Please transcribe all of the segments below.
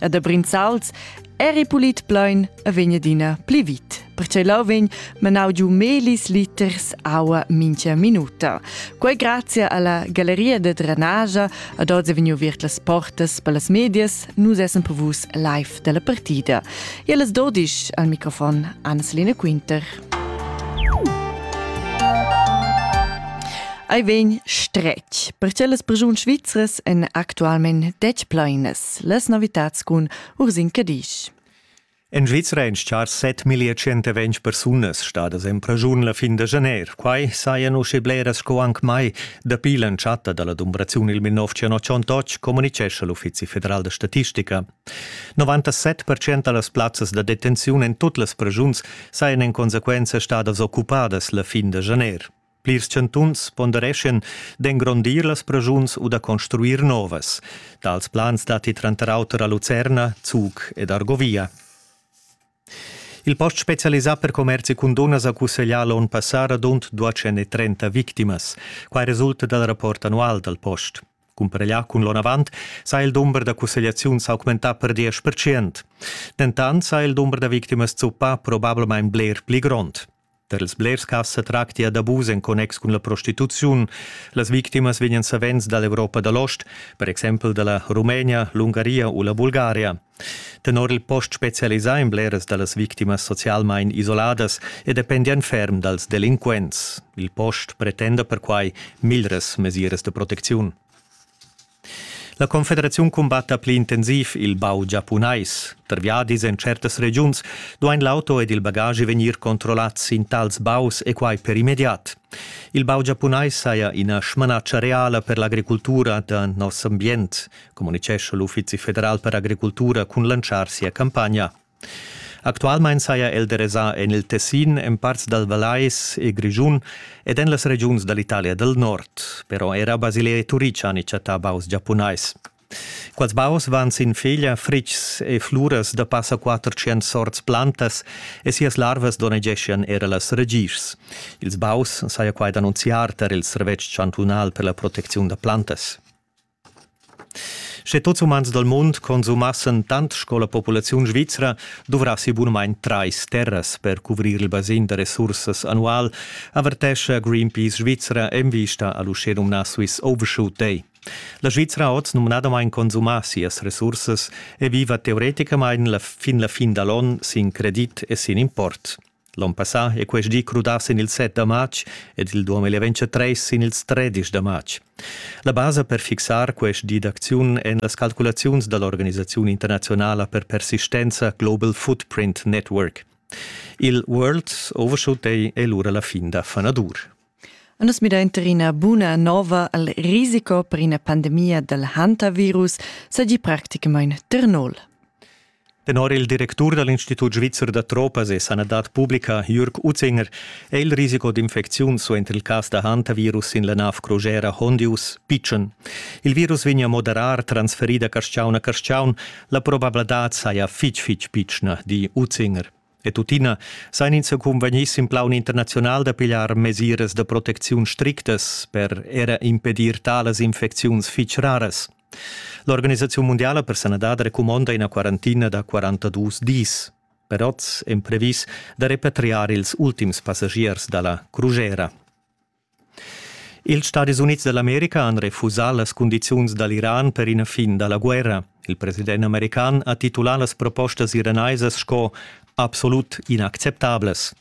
e da Brinzals eri pulit plein e vegn adina pli vit. Perché lau vegn manau giu melis liters aua mincha minuta. Quei grazie alla galleria de drenagia ad oz vegnu virt las portas per las medias, nus essen per vus live della partida. E las 12 al microfon Anneslina Quinter. Ei vegn stretg, perché las persuns svizras en actualment dec plainas. las novitads cun Ursin Cadisch. En Svizra èn char 7.120 persunas stadas en praschun la fin da janer. Quai sajan usche bleras sco anc mai. Dapi l'entschatta da la dumbraziun il 1988 communitgescha l'Uffizi federal da statistica. 97% da las plazzas da detenziun en tut las praschuns sajan en consequenza stadas occupadas la fin da janer. Plirs chantuns pondereschan d'engrondir las pragiuns u da construir novas. Tals plans datti tranter auter a Lucerna, Zug ed Argovia. Il post specialisà per commerzi cun dunnas ha cusseglià l'onn passà radund 230 victimas. Quai resulta dal rapport annual dal post. Cumpareglià cun l'onn avant sa il dumber da cussegliaziun s'augmentà per 10%. Dentant sa il dumber da victimas zuppà probablamain bler pli grond. Per ils blers cas sa tractia d'abus en connex cun la prostituziun. Las victimas vegnan savens da l'Europa da l'ost, per exempel da la Rumenia, l'Ungaria u la Bulgaria. Tenor il post specialisà en bleras da las victimas socialmain isoladas e dependian ferm dals delinquents. Il post pretenda perquai miglras mesiras de protecziun. La Confederaziun cumbatta pli intensiv il bau giapunais. Per viadis en certas regiuns duain l'auto ed il bagagi vegnir controllats sin tals baus e quai per immediat. Il bau giapunais saja ina smanatscha reala per l'agricultura da noss ambient, communitgescha l'Uffizi federal per agricultura cun lantschar sia campagna. Actualmein saja el derasà en il Tessin, en parts dal Vallais e Grischun ed en las regiuns da l'Italia dal Nord. Però era Basilea e Turic han chattà baus giapunais. Quels baus van sin feglia fritgs e fluras da passa 400 sorts plantas e sias larvas donnegeschian era las ragischs. Ils baus saja quai d'annunziar tar il servetsch chantunal per la protecziun da plantas. Sche tuts umans dal mund consumassen tant sco la populaziun svizra, duvrassi bunamain trais terras per cuvrir il basin da resursas annual, avertescha Greenpeace Svizra en vista a l'uschenumnà Swiss Overshoot Day. La Svizra oz numnadamain consuma sias resursas e viva teoreticamain la fin la fin da l'on sin credit e sin import. L'on passà è quest di crudà sin il 7 da matg ed il 2023 sin ils 13 da matg. La basa per fixar quest di d'acziun èn las calculaziuns da l'organisaziun internazionala per persistenza Global Footprint Network. Il World Overshoot è lura la fin da fanadur. Nus midainter ina buna nova al risico per ina pandemia dal hantavirus seigi practicamain Ternol. Tenor il directur dal Institut svizzer da tropas e sanadad publica Jürg Utzinger è il risiko d'infecziun suenter il cas da hantavirus sin la nav crugera Hondius pitschen. Il virus vegnia moderar transferì da carstgaun a carstgaun, la probabladad saja fitg fitg pitschna, di Utzinger. E tuttina sain ins cunvegnì sin plaun internaziunal da pigliar mesiras da protecziun strictas per era impedir talas infecziuns fitg raras. L'Organisaziun mundiala per sanadad recumonda ina quarantina da 42 dis. Per oz è previs da repatriar ils ultims passagiers da la crugera. Ils Stadis Unids da l'America han refusà las cundiziuns da l'Iran per ina fin da la guerra. Il president american ha titulà las propostas iranaisas sco absolut inacceptablas.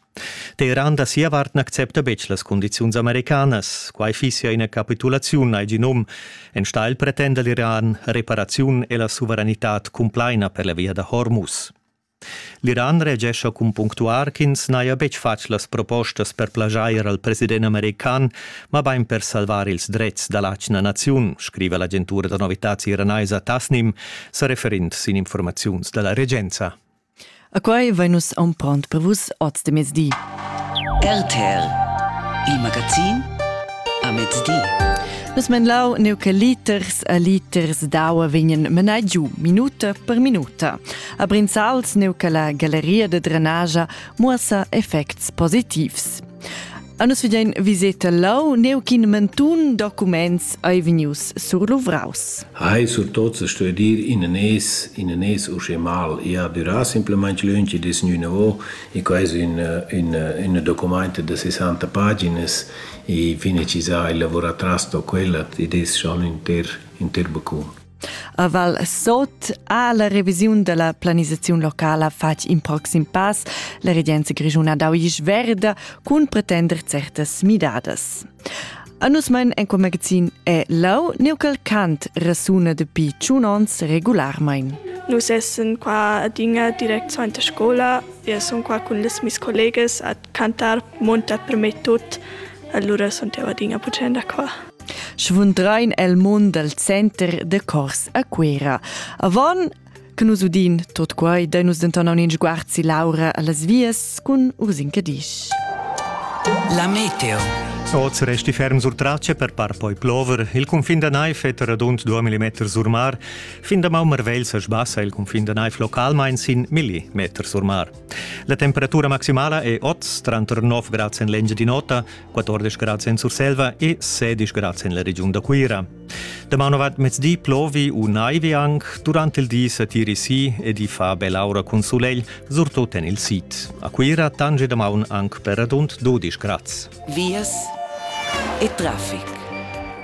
Teheran da sia vart n'accepta betg las cundiziuns americanas. Quai fissia ina capitulaziun al genum. Enstagl pretenda l'Iran reparaziun e la suveranitad cumplaina per la via da Hormuz. L'Iran reagescha cun punctuar ch'ins n'haja betg fatg las propostas per plaschair al president american, mabain per salvar ils dretgs da l'atgna naziun, scriva l'agentura da novitads iranaisa Tasnim, sa referind sin informaziuns da la regenza. A quai vain nus ampront per vus oz de mezdi. RTL, il magazin a mezdi. Nus men lau neu che liters a liters d'aua vegnan menai giu minuta per minuta. A Brinzals neu che la galleria de drenagia muossa effects positivs. A nus vedein viseta lau neu ch'in mentun documents ei vegnius surluvraus. Hai sur tot se sto dir in nes, in nes usche mal, ja dura simplemente lünchi des nu nouveau, e quai es un, un, un documento de 60 paginas e fine ci sa il lavoratras to quella ed es schon inter, inter becum. A Val Sot ha la revisiun della planisaziun locala fatg in proxim pass. La regenza grischuna dau isch verda cun pretender certas midadas. A nus mein en quel magazin è lau neucal cant rasuna dapi tschun ons regularmein. Nus essen qua adina direct suenter scola. Io sun qua cun les mis collegas a cantar monta per me tut. Allura sun eu adina pucenda qua. Schvundrein el mund dal center da cors a Cuera. Avant che nus udin tot quai, dai nus denton aunc sguard si Laura allas vias cun Ursin Cadisch. La meteo. Oz resti ferm sur Tracce per par poi plover. Il confin da Naif è radund 2 mm sur mar. Fin da Maumerwell sa sbassa il confin da Naif localmain sin millimeter sur mar. La temperatura maximala è oz tranter 9 grads en l'engiadin'ota 14 grad en Surselva e 16 grad en la regiun da Cuira. Damaun avat mezdi plovi u naivi anc, durant il di satiri si ed i fa bell'aura cun sulegl, surtut en il sid. A Cuira tange damaun anc per radund 12 grad. Vias e traffic.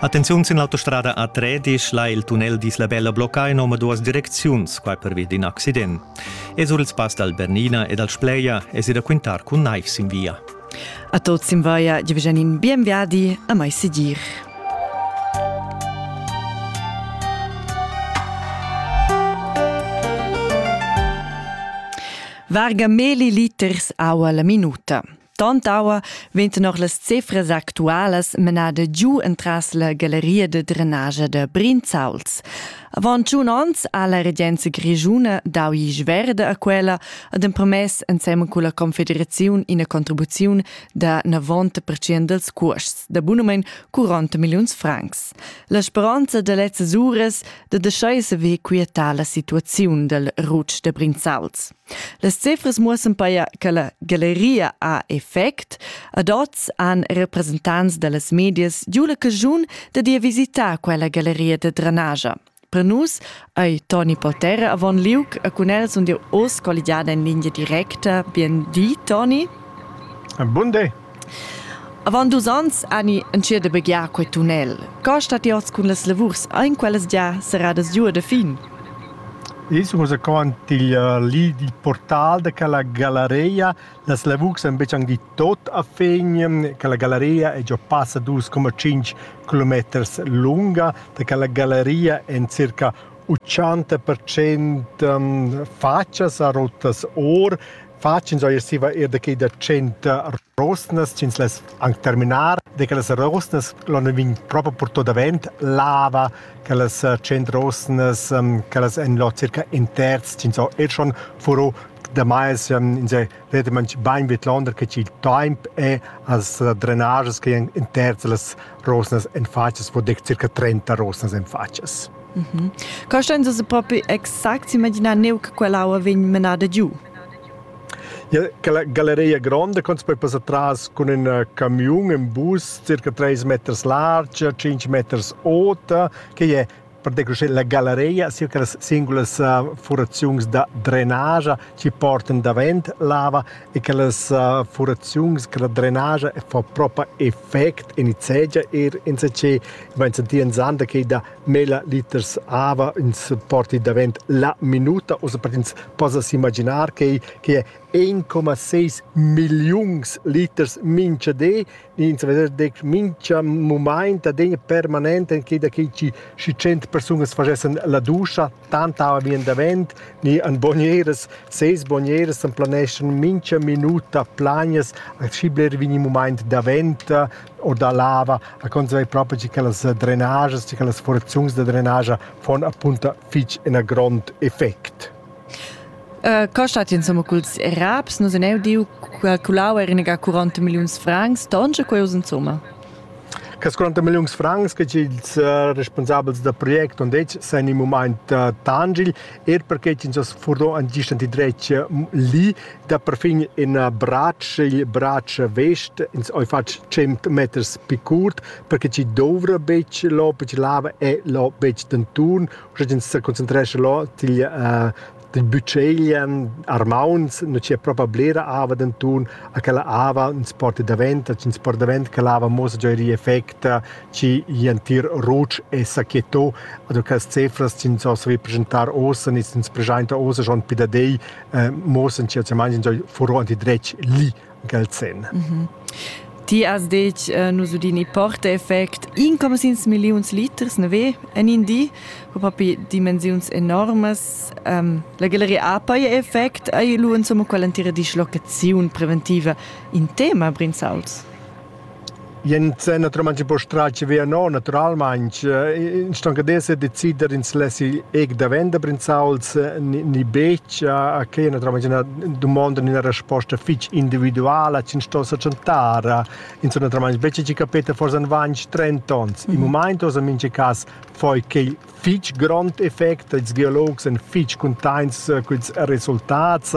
Attenziun sin l'autostrada A13 là il tunnel d'Isla Bella blocca in duas direcziuns, qua pervi d'in accident. E sur il spass dal Bernina e dal Spleia es i da quintar cun naiv sin via. A tot simvaia giovgenin bien viadi a mai sigir. Varga meli liters aua la minuta. Tant aua venten noch las cifras actualas menada giu entras la galleria de drenagia de Brinzauls. Avant tschun onns ha la regenza grischuna dau isch verde a quella ed empromess ensemen con la confederaziun ina contribuziun da 90% dels cuosts da bunumein 40 milliuns francs. La speranza da lezzas uras de deschai saver quietar la situaziun del Rutsch de Brinzals. Las cifras muossan paia che la galleria ha effect. Ad oz han representants da las medias giu la caschun da dir visitar quella galleria da drenagia. Per nus ei Toni Potter avon liug e cun el sun jeu oz colligiada in linea directa. Bien di, Toni. Bun day. Avant dus ans ani entschiet da begiar quei tunnel. Co stat ti oz cun las lavurs? Ein quellas gia serradas giu da fin? Es rezaquant il li il portal da quella galeria. Las lavurs han betg anc di tot a fin. Quella galeria è già passa dus coma cinc kilometers lunga. Da quella galeria en circa 80% um, faccias a rotas or. fatschins eir siva eir da quai da tschient rosnas ch'ins less anc terminar, de che las rosnas l'on vegn proprio porto davent, lava, che las tschient rosnas, che las en lo circa in terz ch'ins ho er schon furo damais in se vede man bain vet londer che il temp è as drenages che in terz las rosnas en fatschas po dec circa 30 rosnas en fatschas. Mm -hmm. Costan se propi exact imaginar neu che quell'aua vegn menada giu? Ja, galleria gronda con poi passar tras con un eh, camion, un bus circa 3 meters large, 5 meters ota, che è pertge che la galeria sia che las singulas uh, furaziuns da drenage ci portan davent lava e che las uh, furaziuns che la drenage fa proprio effect in segia er in se che wenn se di sande che da mila liters ava ins porti davent la minuta o se per ins possa imaginar che che 1,6 millions liters mince de ins vesa detg mincha mumaint adegna permanent enquida che chi schi cent persunas fagessan la duscha, tanta aua vien davent, ni an bonieras, ses bonieras an planeschan mincha minuta plagnas, a schi bler vegni mumaint davent o da lava, a conserver propi che quellas drenajas, che quellas forziuns da drenagia fon appunto fich ena grond effect. Uh, co stat insomma culs raps? Nus en eu diu calculau er iniga 40 milliuns francs, tonge queus insomma. Cas 40 milliuns francs che ils uh, responsabels da project on dec san in moment uh, tangil, er perché ins as furdo an gistanti dretg li da perfin in uh, bracc, il bracc vest, ins oi fatg 100 meters pi curt, perché ci dovra bec lo, bec lava e lo bec d'anturn, sche ins seconcentrescha là til uh, til bütscheglen armauns nu c'è proprio blera ava d'anton a quella ava ins porta davent ins porta davent quella ava mosa già ri effect ci iantir roc e sacchetto also queste cifras ins so savi presentar osen ins ins presenta osen schon pidadei eh, mosen ci als mangi furo anti dretg li Gelsen. Mm -hmm. Ti has detg uh, nus udin i porta-effect income sins milliuns liters, ne ve, en in di, ho propi dimensiuns enormas. Um, la galleria apa e effect ai lu insomma quell'entira dischlocaziun preventiva in tema, Brinzauls. Jent naturalmain po stratge via no, naturalmain. Ins sto anche d'esser decider ins lessi eg da vender brinzauls ni betg. Quai è naturalmain ina dumonda ina resposta fitg individuala ch'ins sto sa tschentar. Ins sto naturalmain betg capir forsa en ventg, trenta onns. Il mumaint ossa en mintga cas fai quai fich grond effect. Ils geologs èn fich cuntaints culs resultats.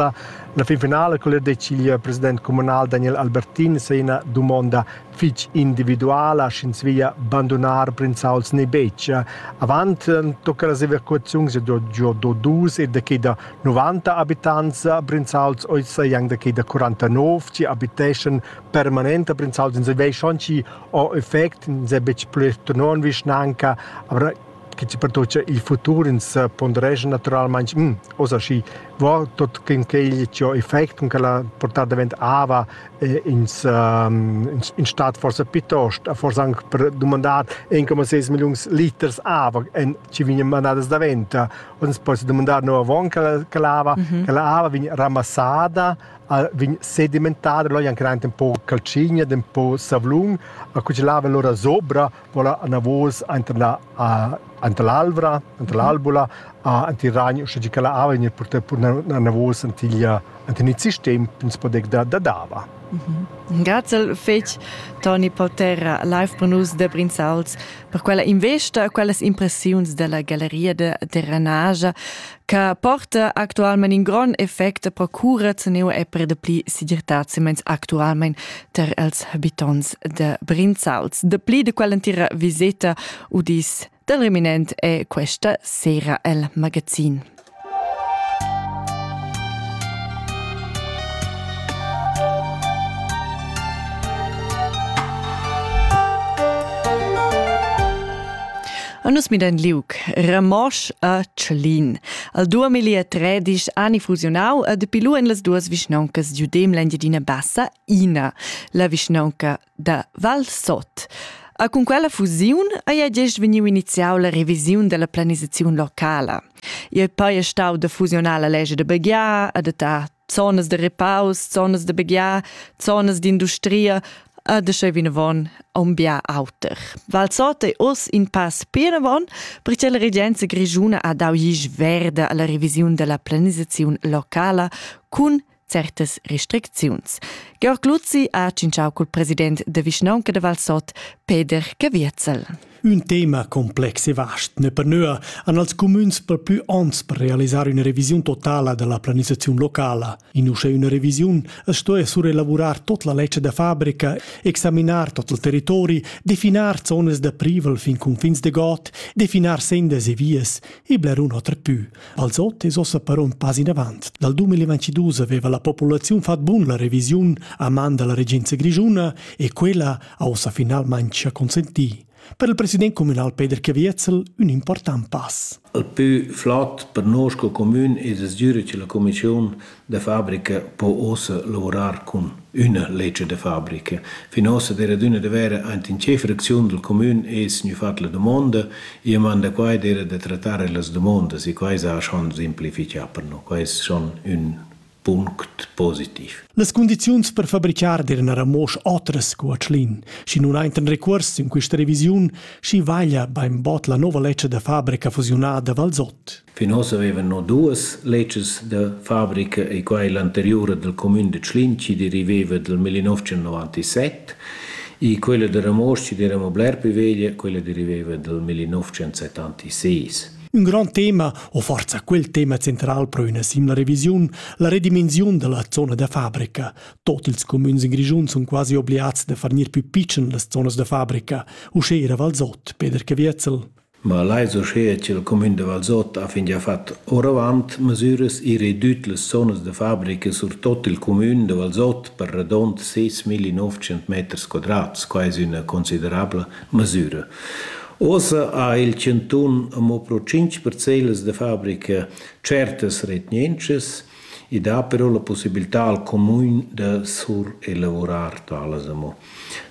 La fin finala quel decidi il president comunal Daniel Albertin se ina dumonda fich individuala, sch'ins via bandunar prinzauls ne betg. Avant tocca las evacuaziuns giò giò do dus e da che da 90 abitants prinzauls oz jang da che da 49 chi abiteschan permanente prinzauls. Ins vei schon chi o effect n'sa betg plü tenor in vischnanca, avra che chi pertocha il futur ins ponderescha natüralmaing hm oza schi vo tuot quint ch'el chi ho effect cun quella portà davent ava e ins in stat forsa piitost forsa anc per dumandar 1,6 milliuns liters ava en chi vegnan mandadas davent. Hoz ins possa dumandar no avant che la ava, che la ava vegn ramassada vegn sedimentada, lò ei anc empau caltschigna, empau savlun, cu che lavan lur zobra, vola anavos enter la enter l'alvra, enter l'albula, enter il ragn, uschè che la ava vegn purtada anavos antiglia enten il sistem ins podec da da dava. Grazel fetg Toni Polterra live per nus da Brinzals per quella investa e quellas impressiuns della galleria de terranagia che porta actualmente un gran effetto pro cura teneu e per de pli segirtazzi meins actualmente ter els habitants de Brinzals. De pli de quell'entira visita udis del Reminent e questa sera el magazin. A nus midan liug Ramosch a Tschlin. Al 2013 ani fusionau e de pilu en las duas vischnauncas d'Udem l'Engiadina Bassa ina, la vischnaunca da Valsot. A cun quella fusiun ei gest vegniu iniziau la revisiun della planisaziun locala. Il pei è stau da fusionar la legge de Begia, adattar zonas de repaus, zonas de begiar, zonas d'industria, a de sche vinavon un bia auter. Val Sota è oss in pass pianavon, perché la regenza grigiuna ha dau gis verde alla revisiun della planisazione locala cun certas restricziuns. Georg Luzzi ha cinciau col president de vischnaunca de Val Sot, Peder Caviezel. Ün tema complex e vast ne per nöa han als cumüns per plü ons per realisar üna revisiun totala dalla planisaziun locala. In uschè üna revisiun es stoja surelavurar tot la ledscha da fabrica, examinar tot il territori, definar zonas da privel fin cunfins de god, definar sendas e vias e blerun oter pü. Als ot es ossa però un pas in avant. Dal 2022 aveva la populaziun fat bun la revisiun a man dalla regenza grigiuna e quella ha ussa finalmain gia consentì per il president communal Peter Caviezel un important pass. Il più flott per noi sco commun è desdüre che la commissione de fabbrica può ossa lavorar con una legge de fabbrica. Fin ossa der adüna de vera ant in che fraczione del commun è signor fat la domanda, e manda quai der de trattare las domande, e quai sa schon simplificar per noi, quai è schon un Punct positiv. Las cundiziuns per fabricar d'eran era mosch otras sco a Tschlin. Schi nun ainten recuors in questa revisiun, schi vaglia bainbot la nova lecia da fabrica fusiunada Valsot. Fin oss avevan no duas leces da fabrica e quai l'anteriura del comune de Tschlin chi deriveva del 1997 e quella da Ramosch chi era bler più veglia, quella deriveva del 1976. Ün grand tema, o forza quel tema central pro üna simla revisiun, la redimensiun della zona da fabrica. Tot ils comüns in Grischun sun quasi obliats da fargnir più pitschen las zonas da fabrica, usché era Valsot, Peter Caviezel. Ma leis uschea ch'il comün de Valsot ha fingià fat oravant mesüras e redüt las zonas da fabrica sur tot il comün de Valsot per radond 6.900 meters quadrats, quai es üna considerabla mesüra. Uossa ha il chantun amo pro tschinch parcellas da fabrica tschertas retgnientschas i dà però la pussibiltà al cumün da surelavurar talas amo.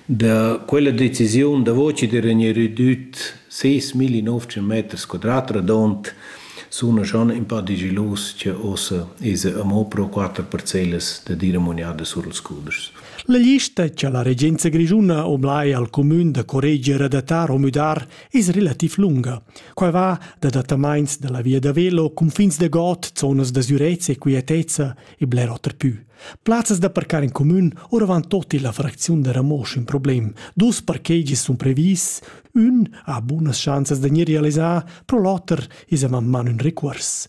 Da quella decisiun davo chi d'eira gnü redüt ses millinovcent meters quadrat radond suna schon ün pa digilus cha uossa esa amo pro quatter parcellas da dir amugnada sur ils cudeschs. La lista che la regenza grischuna oblai al cumün da correger adattar o müdar es relativ lunga. Quai va da adattamaints da la via da velo, cunfins da god, zonas da sürezza e quietezza e bler oter pü. Plazzas da parcar in cumün oravant tot illa fracziun da Ramosch ün problem. Dus parkegis sun previs, ün ha bunas schanzas da gnir realisà, pro l'oter es a man ün recuors.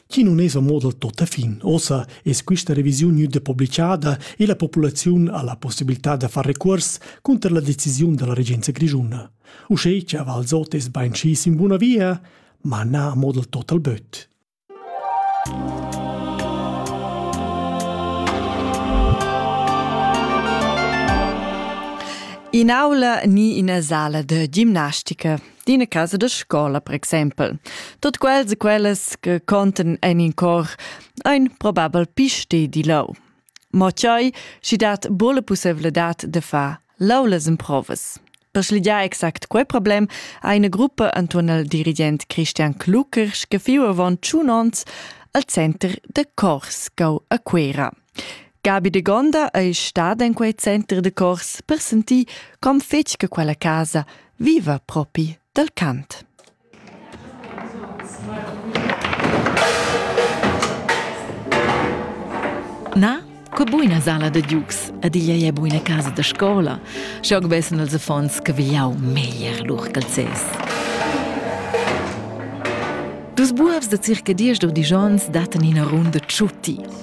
Chi nun es a moda tuottafin. Ossa es quista revisiun gnüda publichada e la populaziun ha la possibilità da far recuors cunter la decisiun da la regenza grischuna. Uschè cha Valsot es bainschi in buna via, ma na a moda total böt. In aula ni ina sala da gimnastica. d'ina casa da scola, per exempel. Tot quels e quellas che conten en in cor ein probabel piste di lau. Mo tgei, schi dat bola pussevladad de far laulas improvas. Per schligiar exact quei problem ha eine Gruppe anton al dirigent Christian Kluckers gefiu avon tschun onns al center de cors cau a Quera. Gabi Degonda ei stada en quei center de cors per sentir com fetg che quella casa viva propi dal cant. Na, co buina sala da Dux ed igl ei buina casa da scola, schog vessen els affons che vigliau meglier lur calzes. Dus buobs da circa diesch digions dattan ina runda ciuti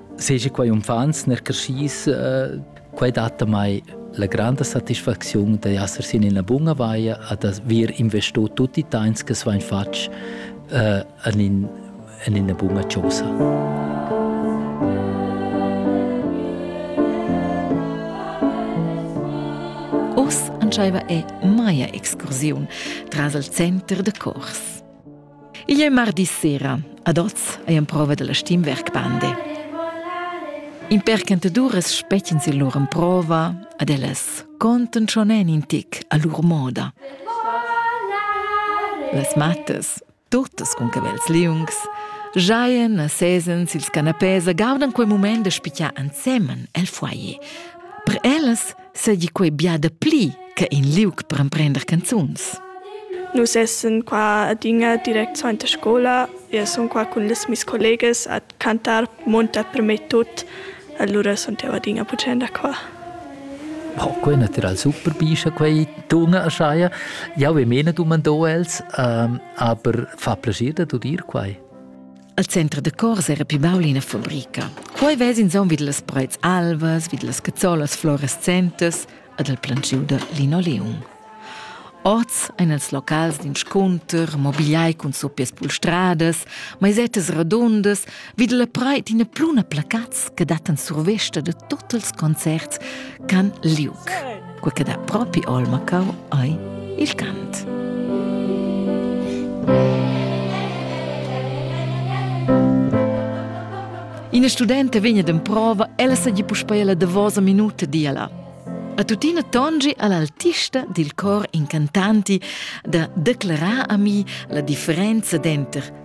Seja quai unfants ner creschis, eh, quai dat mai la grande satisfaczione di essere in una buona vaia ad aver investito tutti i temps che sono fatto eh, in, in una buona cosa. Oss entscheiva è Maya Excursiun tras il center de cors. Igl è mardi sera. Ad oz è emprova dalla Stimmwerk Bande. In percentaduras spetgens il lur emprova, ad ellas conten schon en in tic a lur moda. Las mattas, tuttas con cavels liungs, giaien a sesens ils canapés e gaudan quel moment da spicchar ensemen el foyer. Per ellas seigi quei bia dapli che in liug per emprender canzuns. Nus essen qua adina direct suenter scola e sun qua cun les mis collegas a cantar monta per me tut. Allora sun jau adina puccenda qua. Oh, quei natural super bischa quei dunga erscheia. Jau e mena dumando els, ähm, aber fa piacere da dir quai. Al center da cors era pli baul ina fabrica. Quei vess insomma vid las preits alvas, vid las cazzolas fluorescentes ad el plangiu da linoleum. Oz ein els locals d'inscunter, mobiliai cun suppias pulstradas, maisettas radundas, vid la preit ina pluna placats che dattan survesta da tut ils concerts ch'han liug. quei che dat propi olma cau ei il cant. Ina studenta vegna d'emprova, ella segi puspei la davosa minuta diala. A tuttina tongi all'altista dil cor incantanti da declarar a mi la differenza denter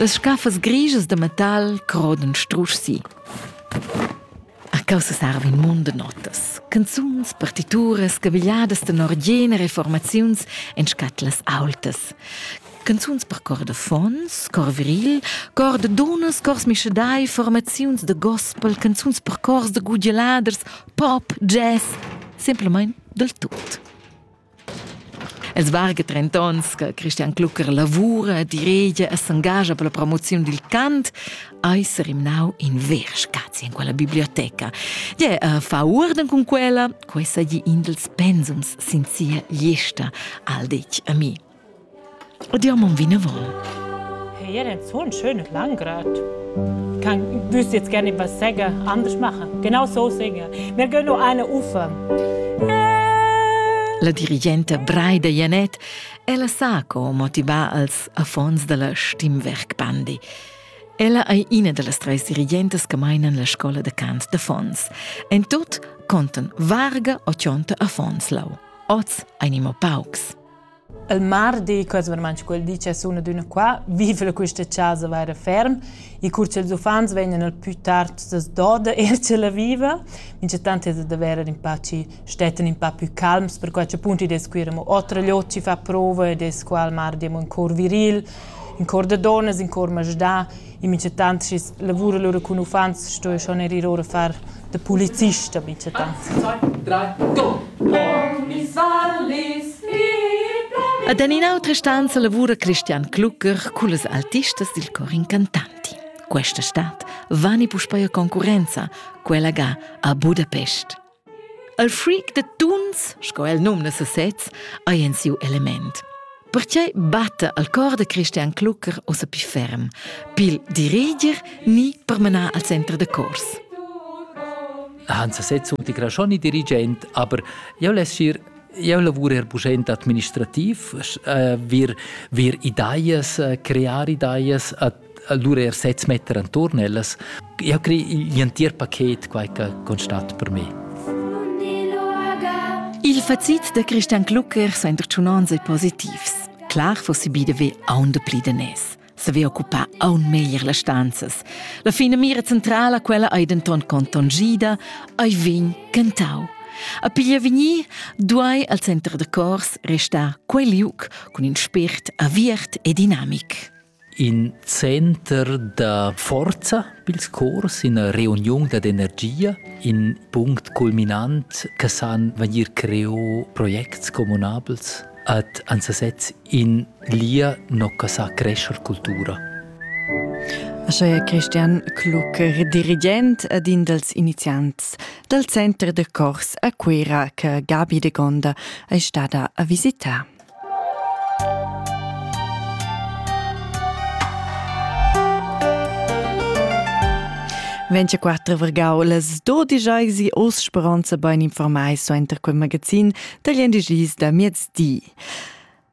Las scaffas grischas da metal crodan strusch si. A causa sarva in mund da notas. Canzuns, partituras, cavigliadas tenor gener e formaziuns en scatlas aultas. Canzuns per cor da fons, cor viril, cor da dunnas, cors mischadai, formaziuns da gospel, canzuns per cors da gudialaders, pop, jazz, semplamain dal tut. Els varga trent'ons che Christian Klucker lavura, diregia e s'engascha per la promoziun dil cant, ei serimnau in ver spazi in quella biblioteca. Gie, uh, fa uorden cun quella, quei sa gli in dels pensums sin sia gliesta, al detg a mi. O dir mon vinavon. Hey, er ein so ein schönes Landgrad. Kann wüsst jetzt gerne was sagen, anders machen. Genau so singen. Wir gehen noch eine Ufer. La dirigenta Braida Janet ella sa co motivar als affons della Stimmwerkbandi. Ella ei ina dallas treis dirigentas che meinan la scola de cant de Fons. En tot conten varga o cionta affons lau. Oz einimo paucs. Il mardi, quels vermand quel di che sun adüna qua, viva quista chasa vaira ferm e cur cha'ls uffants vegnan al pü tard s'as doda eir cha la viva. Minchatant es da verer ün pa chi stettan ün pa pü calms, perquai cha appunto id es quir amo otra gliot chi fa prova ed es qua al mardi amo ün cor viril, ün cor da donnas, ün cor masdà in micetant schi lavura lur cun uffants sto schon er ir ora far de polizist a micetant. Ed en in'autra stanza lavura Christian Klucker con les artistas dil cor incantanti. Questa stad vani puspei a concurenza, quella ga a Budapest. Il freak da tuns, sco el numna sesez, ei en siu element. Pertgei batta al cor da Christian Klucker ossa pli ferm, pil diriger ni per menar al center da cors? Han sesez un tigrasoni dirigent, aber eu less ir eu lavur er buschent administrativ, äh, wir, wir ideas, äh, crear ideas, allura er sez metter enturn ellas. Eu crei igl entir paket quai che constat per me. Il facit da Christian Klucker sa interciunans e positivs. Clar fossi bide ve aun de pli de nes. Se ve occupar aun meglier las stanzas. La fine mira centrala quella ei denton contongida, ai vin cantau. A piglia vigni duai al center de cors restar quel liuc cun in spirt aviert e dinamic. In center da forza pils cors, ina reuniun dad energia, in punct culminant che san vegnir creo projects communabels ad ansasez in lia nocca sa crescer cultura. Ascheia Christian Klucker, dirigent ed in dels iniziants dal Center de Cors a Cuera che Gabi de Gonda è stada a visitare. 24 vergau las 12 eisi os speranza bein informai so enter quel magazin dagli endigis da miezdi.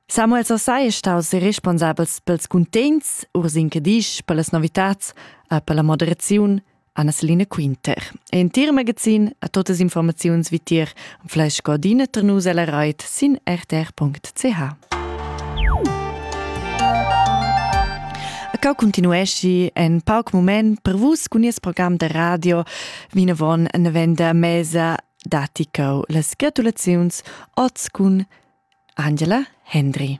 Samuel Sassai è staus responsabels pels cuntegns, urs in Cadisch, per las novitats, e per la moderaziun, Anna-Celine Quinter. In tir magazin a totas informaziuns vitier und fleisch cordina ter nus alla Reit sin rtr.ch. Cau continuesci en pauc moment per vus cun nies program de radio vinavon ne venda mesa dati cau las gratulaziuns oz cun Angela Hendry.